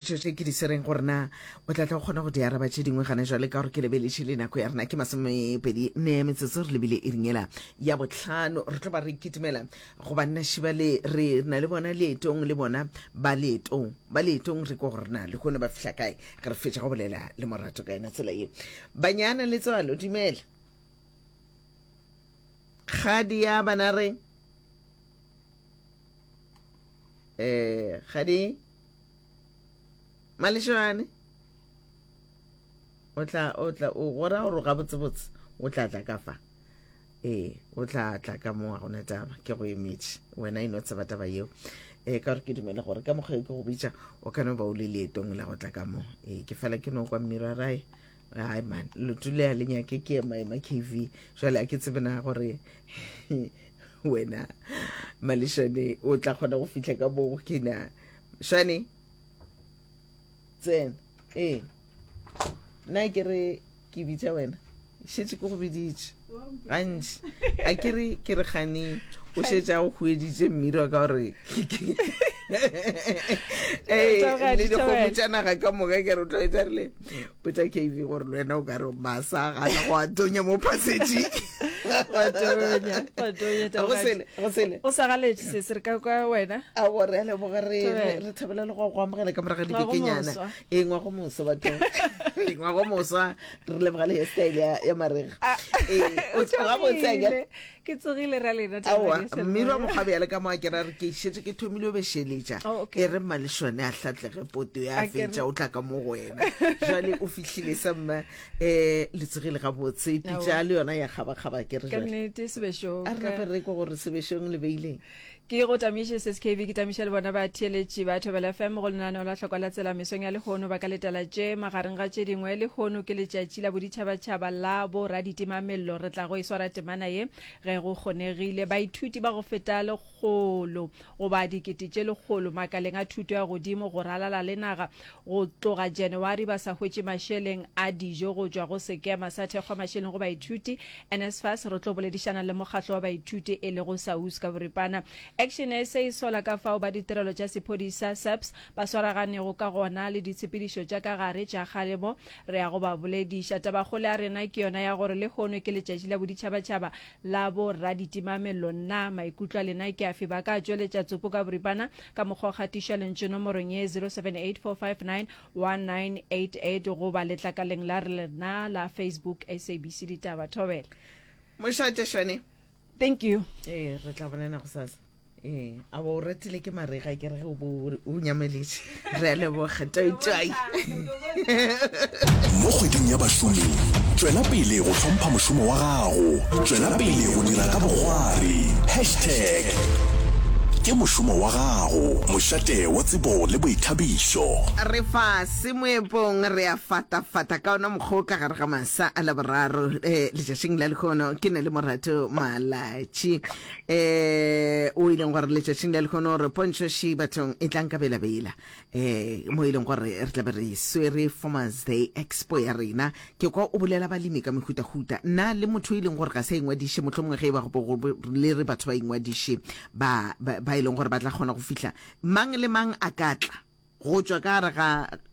tšo tše ke di sereng gore na o tla tla go kgona go di araba tše dingwe gane jwale ka gore ke lebeletse le nako ya rena ke masomepedi ne ya metsotso re lebile e ringela ya botlhano re tlo ba re kitimela go banna šiba le re na le bona leetong le bona ba leetong ba leetong re ko gore na le kgone ba fihla kae ge re fetša go bolela le morato ka yona tsela ye banyana le tswalo dumela kgadi ya bana re um eh, kgadi Malešogane o tla o tla o gora gore ga botse botse o tla tla ka fa ee o tla tla ka mo ga gona taba ke go emetše wena e no tseba taba yeo ee ka gore ke dumele gore ka mokgwa e ke go bitša o kane ba o le leetong la go tla ka mo ee ke fela ke no kwa mmira rae hai man lotu le a le nyake ke ema ema kv jale a ke tsebe na gore wena malešane o tla kgona go fitlha ka moo ke na shane tsena ee nna ke re ke bitsa wena šetse ke go biditše gantši a ke re ke re gane o šetša o hueditše mmirwa ka gore le dikgomo tša naga ka moka ke re o tlo etsa rile botsa kv gore le wena o ka re masa gana go a tonya mo phasetši o sa galetše se se re ka kwa wena a gore a leboga re thabela le go go amogela ka moraga dikekenyana e ngwa go moso batho e ngwa go mosa re leboga le hairstyle ya, ya marega ah, ee, o tsoga botseke ke tsogile ra lena aowa mme ra mokgwa bjale ka mo a kera re ke šetse ke thomile o bešeletša oh, e re mmalešone a hlatlege poto ya fetša o tla ka mo go wena jale o fihlile sa mma um le tsogile gabotse pitša le yona ya kgabakgaba ke re jale a re gape re ko gore sebešong le beileng Ke go tamiše SSKV ke tamiša le bona ba theeletši ba Thobela FM go lenaneo la hlokwa la tsela mesong ya lehono ba ka letela tše magareng ga tše dingwe lehono ke letšatši la boditšhabatšhaba la bo raditimamello re tla go e swara temana ye ge go kgonegile baithuti ba go feta lekgolo goba dikete tše lekgolo makaleng a thuto ya godimo go ralala le naga Go tloga Janawari ba sa hwetše mašeleng a dijo go tšwa go Sekema sa Thekgwamašeleng go Baithuti, NSFAS. Re tlo boledišana le mokgatlo wa baithuti e lego SAUS ka boripana. Action SA e sola ka fao ba ditirelo tša sephodisa, SAPS, ba swaraganego ka gona le ditshepedišo tša ka gare tša kgalemo. Re ya go ba bolediša. Tabakgolo ya rena ke yona ya gore lehono ke Letšatši la Boditšhabatšhaba la Bo-raditimamello. Na maikutlo a lena ke afe? Ba ka tšweletša tsopo ka boripana. ka mokgwa o gatiša lentšu nomorong ye 0784591988 goba letlakaleng la rena la Facebook SABC Ditaba. Thobela. Mošate Shane. Thank you. Ee, re tla bonana go sasa. Ee, a ba o ratile ke marega ke re ge o bo o nyameletše. Re a leboga. Toitoi. Mo Kgweding ya Bašomi, tšwela pele go hlompha mošomo wa gago. Tšwela pele go dira ka bokgwari. Hashtag Ke mošomo wa gago, mošate wa tsebo le boithabišo. Re fa se moepong, re a fatafata ka ona mokgwa o ka gare ga masa a Laboraro eh, letšatšing la lehono. Ke ne le Morato Malatši eh, o ileng gore letšatšing la lehono re pontšho ši bathong e tlang ka belabela. eh mo e leng gore re tlabe re swere farmers day expo ya rena ke kwa o bolela balemi ka mehutahuta nna le motho e leng gore ga sa ingwadiše motlho mongwe ge e ba le re batho ba ingwadiše ba e leng gore ba tla kgona go fihla mang le mang a ka tla go tšwa ka gare ga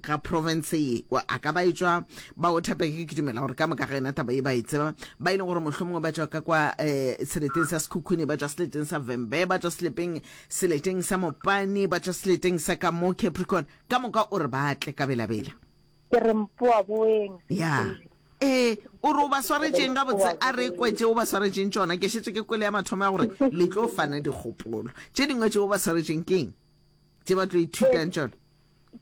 ga province ye a ka ba e tšwa ba o thapeke ke dumela gore ka moka ga ena taba e ba e tseba ba e leng gore mohlomongwe ba tšwa ka kwa um seleteng sa sekhukhune ba tšwa seleteng sa vembe ba tšwa selepeng Seleteng sa mopane, ba tšwa seleteng sa ka mo Capricorn, ka moka o re ba tle ka belabela. Ke re mpoa boeng. Ya. E, o re o ba swaretšeng gabotse, a re kwe tše o ba swaretšeng tšona, ke šetše ke kwele ya mathomo ya gore le tlo fana dikgopolo. Tše dingwe tše o ba swaretšeng ke eng tše ba tlo ithutang tšona?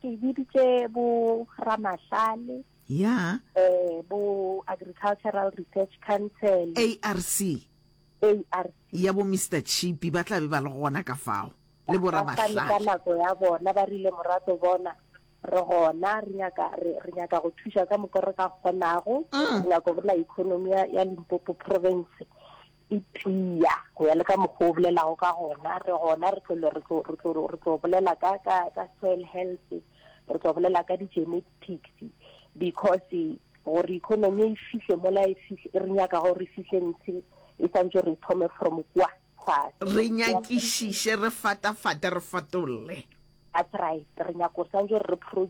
Ke biditše bo ramahlale, Ya. um bo Agricultural Research Council, ARC. ARC. Ya bo Mister Chippy ba tla be ba le gona ka fao, le bo Ba fane ka Ramahlale. nako ya bona, ba rile, Morato, bona, re gona, re nyaka, re, re nyaka go thuša ka moka re ka kgonago. Re nyaka bona economy ya, ya Limpopo Province e tia, go ya le ka mokgwa o bolelago ka gona. Re gona, re tlo, re tlo, re tlo, re tlo bolela ka, ka, ka soil health, re tlo bolela ka di-genetic. taxi because gore economy e fihle mola e fihle e re nyaka gore re fihle ntse e santse re thome from kwa tlase re nyakišiše re fatafate re fatolle that's right re nyaka gore santse re produce